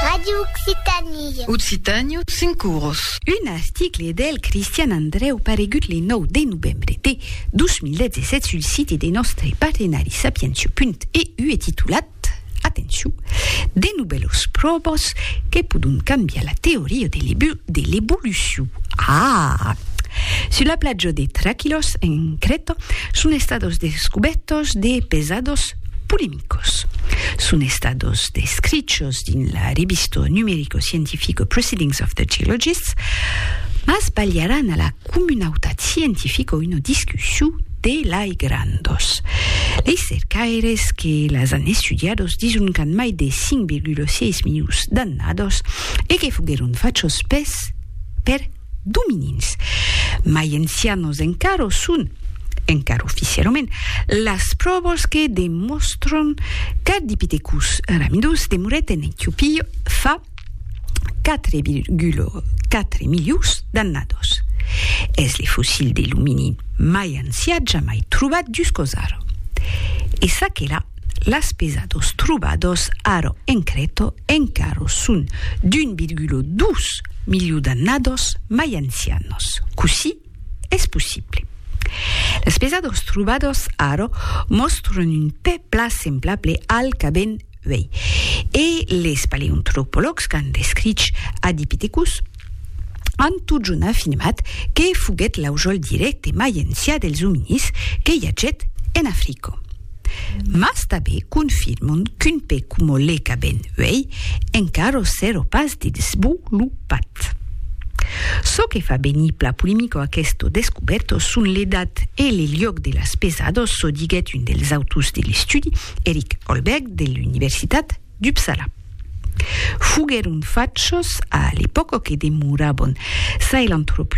Radio Occitanie. Occitània, cinc oros. Un article del Cristian Andrèu paregut le 9 de novembre de 2017 sul site de nòstre partenari sapientia.eu e titulat, atencion, De novèlas pròvas que pòdon cambiar la teoria de l'evolucion. Aah! Sus la platja de Traquilos, en Crèta, son estados descubèrtas de pesados polemicos. Son estados descrichos dins la revistó numericoscientifico Proceedings of the Geologists, mas balharàn a la comunautat scientifica una discussión de lai grandos. Lei cercaires que las an estudiados dison qu'an mai de 5,6 milions d'annados e que foguèron fachos pes per dominins. Mai ancianos encara son, encara oficialament, las pròvas que demòstran qu'Ardipithecus ramidus demorèt en Etiopia fa 4,4 milions d'annadas. Es le fossil de l'ominin mai ancian jamai trobat juscausara. E çaquelà Las pesados trobados ara en Crèta encara son d'un virgula dos miliu d'annadas mai ancianas. Cossí es possible? Las pesadas trobadas ara mòstran un pè plan semblable al qu'avèn uèi, e les paleantropològs qu'an descrich Adipithecus an totjorn afirmat que foguèt l'aujòl dirècte mai ancià dels ominís que i agèt en Africa. Mas tanben confirman qu'un pè coma le qu'avèm uèi encara s'èra pas desvolopat. Çò que fa venir pla polemica aquesta descobèrta son l'edat e le luòc de las pesadas, çò diguèt un dels autors de l'estudi, Erik Holberg, de l'Universitat d'Uppsala. Foguèron fachos a l'epòca que demorabon Sahelanthropus.